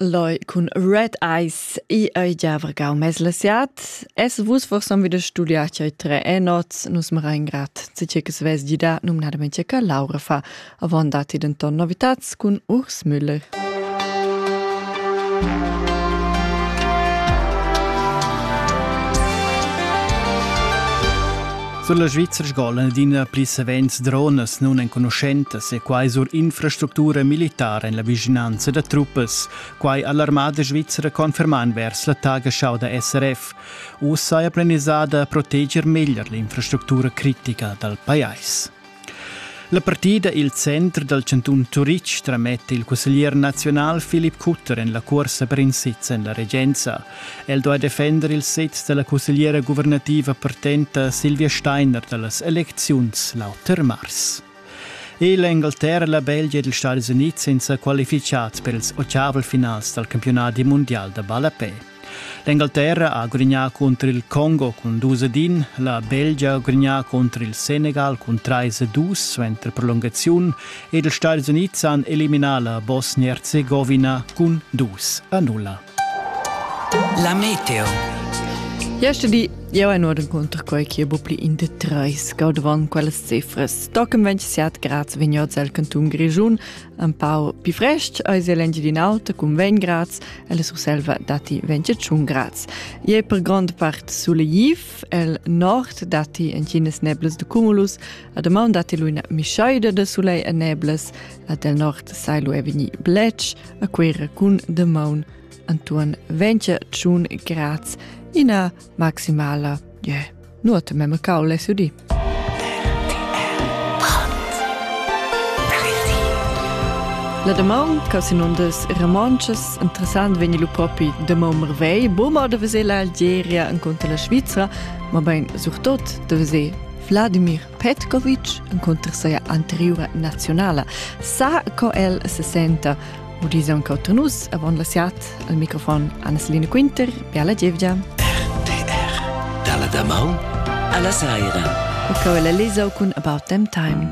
Loi cun Red Eyes i ei giavrgau mes la siat. Es vus forsom wieder studiar che tre e nots nus mera in grat zice che sves gida numnadamente che Laura fa avon dati den ton novitats cun Urs Müller. Sur la Svizra sgolan adina pli savens dronas nunenconuschentas e quai sur infrastructura militara en la vischinanza da truppas. Quai ha l'armada svizra confermà envers la Tagesschau da SRF. Uss saja planisada proteger meglier l'infrastructura critica dal pajais. La partida il center dal chantun Turitg trametta il cusseglier nazional Philipp Kutter en la cuorsa per in sez en la regenza. El doi defender il sez dalla cussegliera guvernativa partenta Silvia Steiner dallas elecziuns l'auter mars. E l'Engleterra, la Belgia ed ils Stati Uniti senza qualificat per ils ottavel finals dal campionat mundial da ballapè. L'Engalterra ha grignà cunter il Congo cun dus ed in, la Belgia ha grignà cunter il Senegal cun trais e dus suenter prolungaziun ed ils Stati Unids han eliminà la Bosnia-Herzegovina cun dus a nulla. La Meteo. Jeste di Jau è nur incontra quai che bu pli in de treis gaudavan quellas cifras. Toccam 27 grads vignots al canton Grischun, un pau pi frest eis el Engiadin'Alta cun 20 grads, e la Surselva datti 21 grads. I è per grond part sulegif, el nord datti entginas neblas de cumulus, a domaun datti lu ina mischaida de sulei e neblas, a del nord sai lu vegni blec, a quera cun demaun antuan 20 tschun grads, ina maximala, yeah. Nuot memecau less udì. La damaun che sinundas romontschas interessant vegni lu propi de mau mervei, boma de veser l'Algeria incontra la Svizra, ma bein surtot de veser Vladimir Petkovic incontra seia anteriura nazionala. Sa co el se senta Udis aunc auter nus avon la siat al microfon Anneslina Quinter, Biala Gievgia. RTR Dalla damaun alla saira. E cau la lesau cun About Them Time.